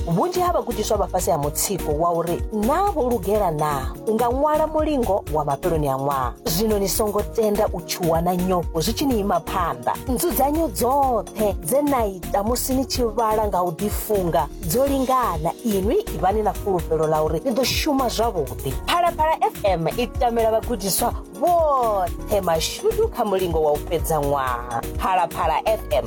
vhunzhi ha vhagudiswa vha fhasi ha mutsiko wa uri naa vho lugela naa u nga ṅwala mulingo wa mafheloni a ṅwaha zwino ni songo tenda u tshuwa na nyofho zwi tshi ni ima phanḓa nzudzanyo dzoṱhe dze na ita musi ni tshi vhala nga u ḓifunga dzo lingana inwi ivhani na fulufhelo ḽa uri ni ḓo shuma zwavhuḓi phalaphala fm i tamela vhagudiswa vhoṱhe mashudu kha mulingo wa u fhedza ṅwaha phalaphala fm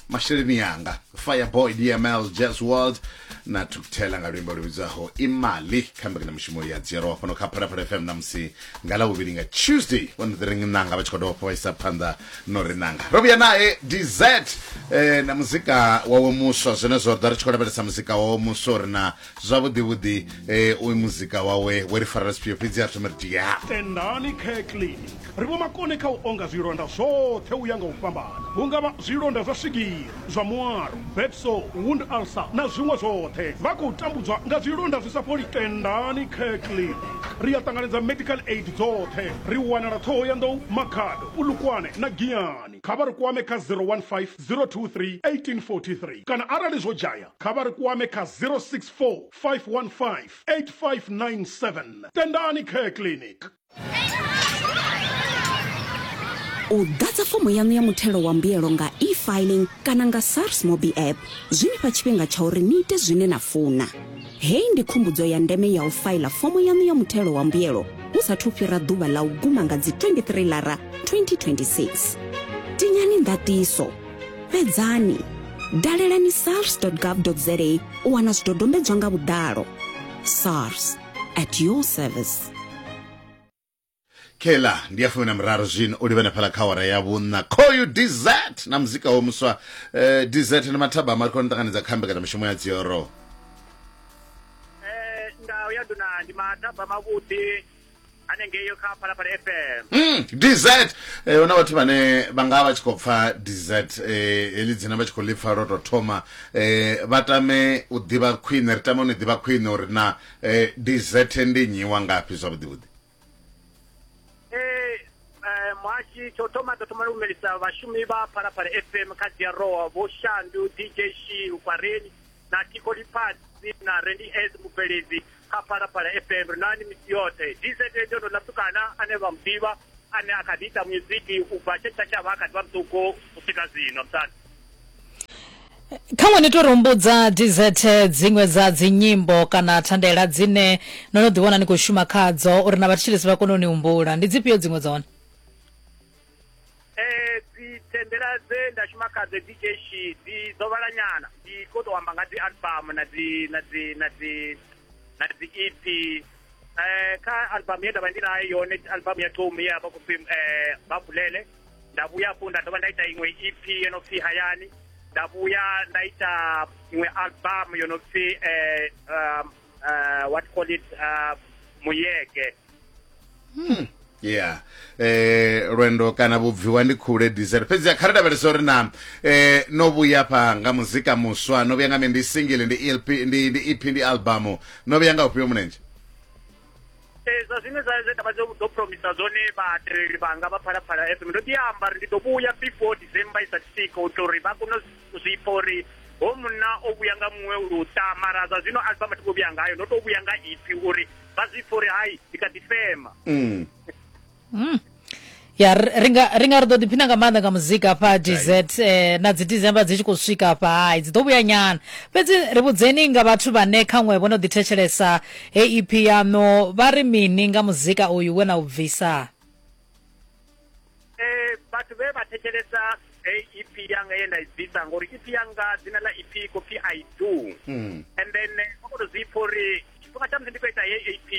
masheleni yanga fireboy dml jazz world na tukthela nga luimbo lu vhidzwaho imali kha mbekanyamushumo ya dzhielwa fhano kha phalaphala fm namusi nga lavhuvhili nga tuesday one the ring nanga vha tshi khou dovha fha vhaisa phanḓa no ri nanga ro vhuya nae dz eh, na muzika wawe muswa zwenezwo ḓa ri tshi khou lavhelesa muzika wawe muswa uri na zwavhuḓi vhuḓi eh, uyu muzika wawe we ri farela zwifhio fhedzi a thoma ri ti ya tendani care clinic ri vho makone kha u onga zwilonda zwoṱhe u ya nga u fhambana hu nga vha zwilonda zwa swigiri zwa muaro bedso wound ulcer na zwiṅwe zwoṱhe vha khou tambudzwa nga zwilonda zwi sa fholi tendani care clinic ri a ṱanganedza medical aid dzoṱhe ri wanala ṱhoho ya nḓou makhado pulukwane na giyani kha vha ri kwame kha 015 023 1843 kana arali zwo dzhaya kha vha ri kwame kha 064 515 8597. Tendani Care Clinic. U ḓadza fomo yaṋu ya muthelo wa mbuyelo nga e-filing kana nga SARS Mobi app zwi ni fha tshifhinga tsha uri ni ite zwine na funa. Hei ndi khumbudzo ya ndeme ya u faila fomo yaṋu ya muthelo wa mbuyelo hu sathu fhira ḓuvha ḽa u guma nga dzi 23 lara 2026. Tinyani ndatiso fhedzani dalelani sars gov za u wana zwidodombedzwa nga vhuḓalo sars at your service kela ndi ya fumi na miraru zwino u livhana phala kha wara ya vhunna khoyu dz na muzika wo muswa eh, dz na mathaba amari khona ṱanganedza kha mbekanyamishumo ya dzioro eh, ndau ya duna ndi mathaba mavhuḓi anengeyo kha phalaphala fm Mm, dz eh, huna vhathu vhane vha nga vha tshi khou pfa dz eh, heḽi dzina vha tshi khou lipfa lwo tou thoma eh, vha tame u ḓivha khwine ri tame u ni ḓivha khwine uri na eh, dz ndi nnyi wa ngafhi zwavhuḓi vhuḓi Eh, eh, muhashi tsho thoma ḓo thoma lumelisa vhashumi vha phalaphala fm kha diaroa vho shandu dj shi ukwareni na tiko lifhasi na rendi s mubveledzi kha phalaphala fm ri nani misi yoṱhe dz ndo ndo laptukana ane vha muḓivha ane a kha ḓi ita muziki u bva tshe tshatshavha a kha ḓi vha muṱuku u swika zwino msani kha ṅwe ni to rumbudza dz dziṅwe dza dzinyimbo kana thandela dzine no no ḓiwana ni khou shuma khadzo uri na vhathetshelesi vha kone u ni humbula ndi dzifhio dziṅwe dza hone Eh, dzi tendela dze nda shuma kha dzi DJ shi dzi dzo vhala nyana dzi kho to amba nga dzi album na dzi na dzi na dzi na dzi EP eh kha album ye ndavha ndi nayo yone album ya Tom ye avha khou pfi eh vha bulele nda vhuya afho nda dovha nda ita iṅwe EP yo no pfi hayani nda vhuya nda ita iṅwe album yo no pfi eh um, uh, what call it uh, muyeke yeah eh lwendo kana vhubviwa ndi khule diesel fhedzi kha ri lavhelesa uri na eh no vhuya pha nga muzika muswa no vhuya nga me ndi single ndi LP ndi ndi EP ndi album no vhuya nga ufhio munenje Eh, zwa zwine zwa zwe ndavha dzo dzo promisa zwone vhatereli vhanga vha phalaphala fm ndo ḓi amba ri ndi ḓo vhuya before december i sa swika u tori vha kone u zwipfa uri ho munna o vhuya nga muṅwe luṱa mara zwa zwino alfa mathu vho vhuya ngayo ndo to vhuya nga ipfi uri vha zwi pfa uri hai ndi kha ḓi fema mm. mm. ya ri nga ri nga ri ḓo ḓiphina nga maanḓa nga muzika hafha dz eh, na dzi december dzi tshi khou swika hafha hai dzi ḓo vhuya nyana fhedzi ri vhudzeni nga vhathu vhane khaṅwe vho no ḓithetshelesa hei ep yaṋu vha ri mini nga muzika uyu we na u bvisa eh vhathu vhe vha thetshelesa eh, EP yanga ye nda i bvisa ngori EP yanga dzina ḽa EP khou pfi I do Mm. and then eh, vha khou tou zwi pfha uri tshifhinga tsha musi ndi khou ita heyi EP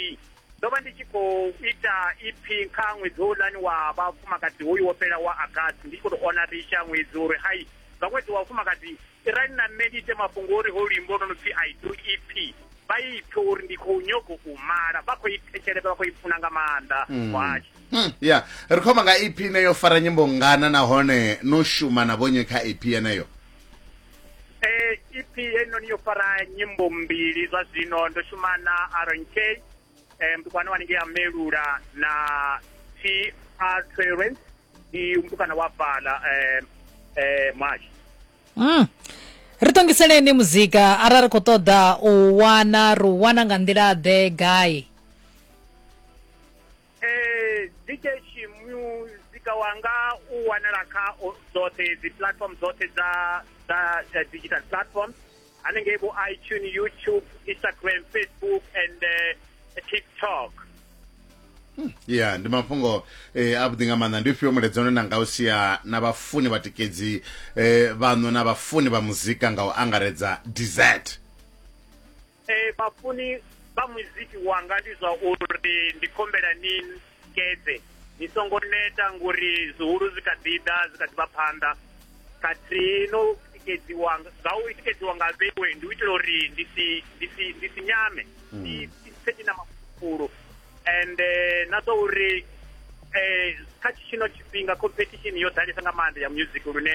ndo vha ndi tshi khou ita EP kha ṅwedzi houḽani wa vhafumakadzi hoyu wo fhela wa August ndi tshi khou tou ona ri isha ṅwedzi uri hai nga ṅwedzi wa vhafumakadzi Tirani na nṋe ni ite mafhungo uri ho luimbo lwo no pfi I do EP vha i pfe uri ndi khou nyogo u mala vha khou i thetshelesa vha khou i funa nga maanḓa muhashi Mm, ya ri khou amba nga ep ine yo fara nyimbo ngana nahone no shuma na vhonye kha ep yeneyo Eh, EP heinoni yo fara nyimbo mbili zwa zwino ndo shuma na Aaron K eh, mtukwana wanenge amelula na t r clearance ndi mtukwana wa bala eh, eh, mwashi mm. ri tongiseleni muzika arali ri khou ṱoḓa u wana ri u wana nga nḓila ḓe gai eh, dj muzika wanga u wanala kha o- dzoṱhe dzi platform dzoṱhe dza dza eh, digital platform hanengei vho itune youtube instagram facebook and uh, tiktok hmm. ya ndi mafhungo eh, avhuḓi nga maanḓa ndi ufhio mulaedza une na nga u sia na vhafuni vhatikedzi eh, vhaṋo na vhafuni vha muzika nga u angaredza desert eh, vhafuni vha muziki wanga ndi zwa uri ndi khombela ni tikedze ni songo neta ngori zwihulu zwi kha ḓi ḓa zwi kha ḓi vha phanḓa khathihi no tikedziwa nga u tikedziwa nga vhewe ndi u itela uri ndi si ndi si ndi si nyame hmm. ndi pfe ndi na mafulu and eh, na zwa uri um kha tshino tshifhinga competition yo ḓalesa nga maanḓa ya music lune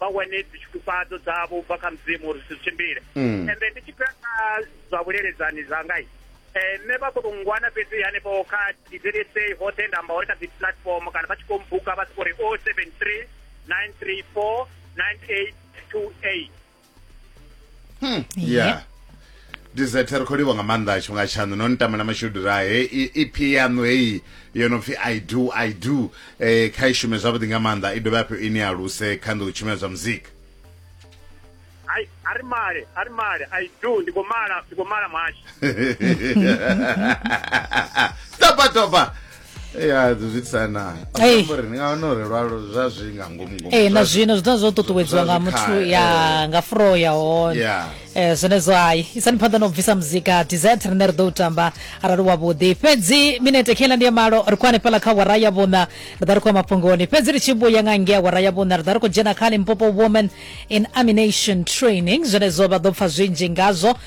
vha wane dzitshikufhadzo dzavho ubva kha mudzimu uri zwithu tshimbile mm. ende ndi tshi fhira kha zwa vhuleledzani zwangai um eh, nṋe vha koto ngwana fhedzi hanefho kha dzsa hoṱhe nda amba uri kha dzi platform kana vha tshi khou mbuka vha siko ri o oh seven three nine three four nine eight two eight hmm. yeah dizete ri khou livha nga maanḓa a tshifhinga tshaṋu no ni tamela mashudu ra he ep yaṋu heyi yo no pfi i do i do um kha i shume zwavhuḓi nga maanḓa i dovhe hafho i ni aluse kha nḓou tshumela zwa muzika ai a ri male a ri male i do ndi khou mala ndi khou mala muhashi topa topa ya eh, zwitsana uri ni nga wana uri lwalo zwa zwi nga ngomu ngomu eh na zwino zwi ḓa zwo ṱuṱuwedziwa nga muthu ya eh. nga fro ya hone eh zwenezwo hayi isani phanḓa na u bvisa muzika desert rine ri ḓo u tamba arali wa vhuḓi fhedzi minete khela ndi ya malo ri khou hanefhala kha wara ya vhuṋa ri ḓa ri khou ya mafhungoni fhedzi ri tshi vhuya nga ngea wara ya vhuṋa ri ḓa ri khou dzhena kha limpopo woman in amination training zwenezwo vha ḓo pfa zwinzhi ngazwo